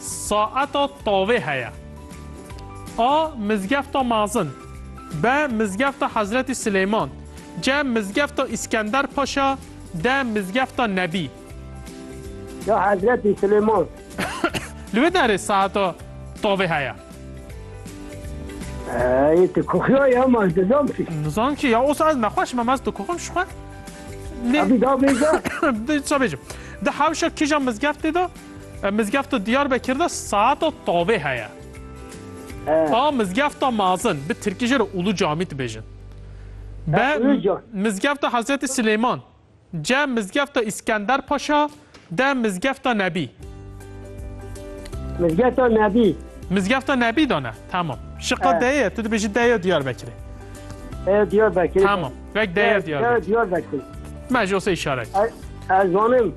Saeta tavê heye. A. Mizgefta mezin. B. Mizgefta Hezretî Silêman. C. Mizgefta Îskender Paşa. D. Mizgefta Nebî. Ya Hezretî Silêman. Li wê derê saeta tavê heye. Ey tu kuxiya ya ma dizam ki. Nizam ki ya osa ez nexweş me mez tu kuxim şixwe. Abi da bêja. Di ça bêjim. Di hewşa kîja mizgeftê de Mizgefta Diyarbekir de saeta tavê heye. A mizgefta mazin bi tirkî jê re Ulu Camî dibêjin. Be mizgefta Hezretî Silêman, ce mizgefta Îskender Paşa, de mizgefta Nebî. Mizgefta Nebî. Mizgefta Nebî de ne. Tamam. Şiqa de ye, tu dibêjî de ye Diyarbekirê. Ev Diyarbekirê. Tamam. Vek de ye Diyarbekirê. Diyarbekirê. Me ji o se îşaret. Ez zanim.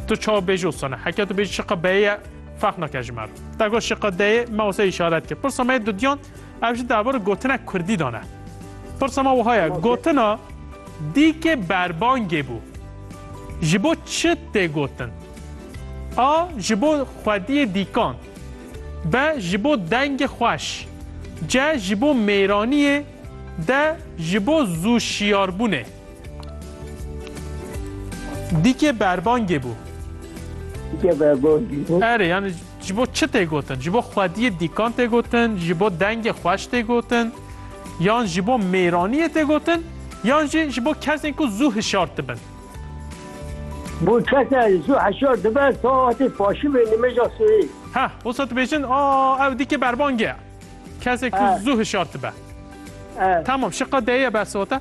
Tu çawa bêjî û sone? Heke tu bêjî şiqa beyê ye ferq nake ji me re. Te got şiqa deyê me wisa îşaret kir. Pirsa me yê dudiyan ev jî derbarê gotina kurdî dane. Pirsa me wiha ye gotina dîkê berbangê bû. Ji bo çi tê gotin? A ji bo xwediyê dîkan. B ji bo dengê xweş. C ji bo mêraniyê. D ji bo zû şiyarbûnê. Dîkê berbangê bû. Dîkê berbangê bû. Erê yani ji bo çi tê gotin? Ji bo xwediyê dîkan tê gotin, ji bo dengê xweş tê gotin, yan ji bo mêraniyê tê gotin, yan jî ji bo kesên ku zû hişar dibin. Bo kesa zû hişar dibe saetê paşimê nimêja sihê. Heh, wisa dibêjin a ew dîkê berbangê ye. Kesê ku zû hişar dibe. Tamam, şiqa deyê ye bersivate.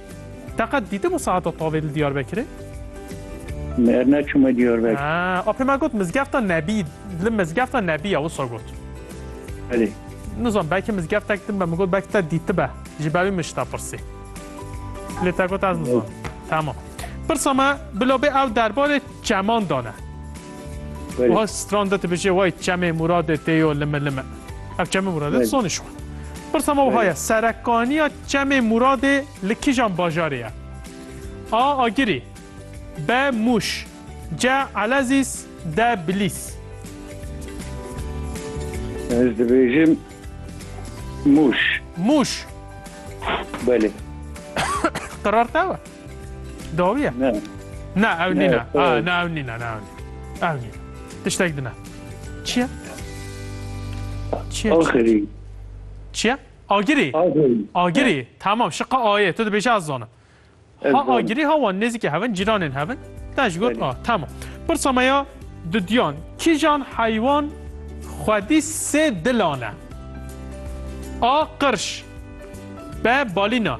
Te qet dîtibû saeta tavê li Diyarbekirê? Her neçûme Diyarbekir. Ah, a pê me got mizgefta Nebî, li mizgefta Nebî ya wisa got. Belê. Nizan belkî mizgeftek din be min got belkî te dîtibe. Ji ber wî min ji te pirsî. Lê te got ez nizanim. Tamam. Pirsa me bila bê ew derbarê çemandan e. Wiha stran de dibêje way çemê Muradê tê yo lime lime. Ev çemê Muradê di sonê şiwan. Pirsa me wiha ye serekaniya çemê Muradê li kîjan bajarê ye? A Agirî B Mûş C Elezîz D Bilîs Ez dibêjim Mûş. Mûş. Belê. Qerar te we? Dawiye? Ne. Ne ew Ne, nîne. sor. Ah, ne ew nîne, ne ew nîne. Ew nîne. Tiştek dine. Çi ye? Çi ye? Axirî. Çi ye? Agirî. Axirî. Agirî. Tamam, şiqa ayê. Tu dibêje ez zanim. Ez Ha zanim. agirî ha wan nêzîkê hevin, cîranên hevin. Te ji got Belê. a. Tamam. Pirsa me ya dudiyan. Kîjan heywan xwedî sê dilan e? A. Qirş. B. Balîna.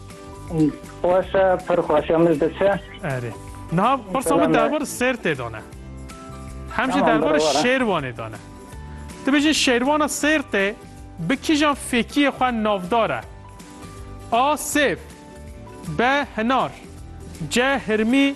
Wasa pir xweşe min diçe. Erê. Niha pirsa min derbar sêrtê de ne. Hem jî derbar şêrwanê de ne. Tu bijî şêrwana sêrtê bi kîjan fêkiyê xwe navdar e? A. Sêrt B. Hinar C. Hirmî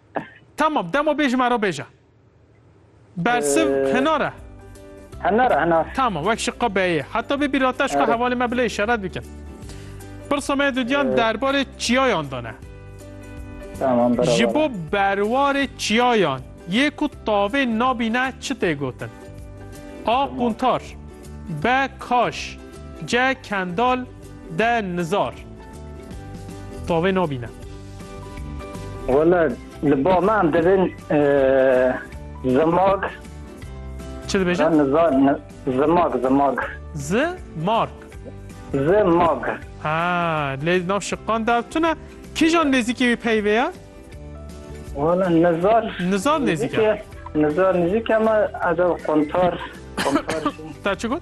Tamam demo bê ji me re bêje. Bersiv hinar e. Hinar hinar. Tamam wek ji qebeyê. Heta bê bîrata ji hevalê me bile işaret bikin. Pirsa me dudiyan derbarê çiyayan dane. Tamam beraber. Ji bo berwarê çiyayan yê ku tavê nabîne çi tê gotin? A. Quntar B. Kaş C. Kendal D. Nizar Tavê nabîne. Wala li ba me em dibin zimak. Çi dibêje? Zimak zimak. Zi mark. Zi mag. Ha lê nav şiqan der tune kîjan nêzîkî wî peyvê ye? Wala nizar. Nizar nêzîk e. Nizar nêzîk e me ez ev qontar qontar. Te çi got?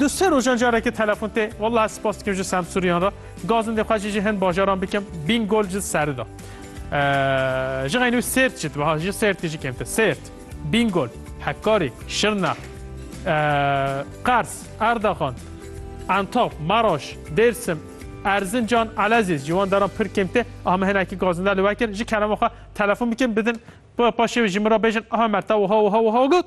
Du sê rojan carekê telefon tê. Wellahî spas dikim ji Semsûriyan re. Gazindê xwe jî ji hin bajaran bikim. Bîngol ji Serida. Ji xeynû Sêrt jî dibe ha. Ji Sêrtê jî kêmtir. Sêrt, Bîngol, Hekkarî, Şirnex, Qers, Erdaxan, Entaf, Meraş, Dêrsim, Erzincan, Elezîz. Ji wan deran pir kêm tê. Aha min hinekî gazinder li we kir. Ji kerema xwe telefon bikim bidin. Paşê wê ji min re bêjin aha me te wiha wiha wiha got.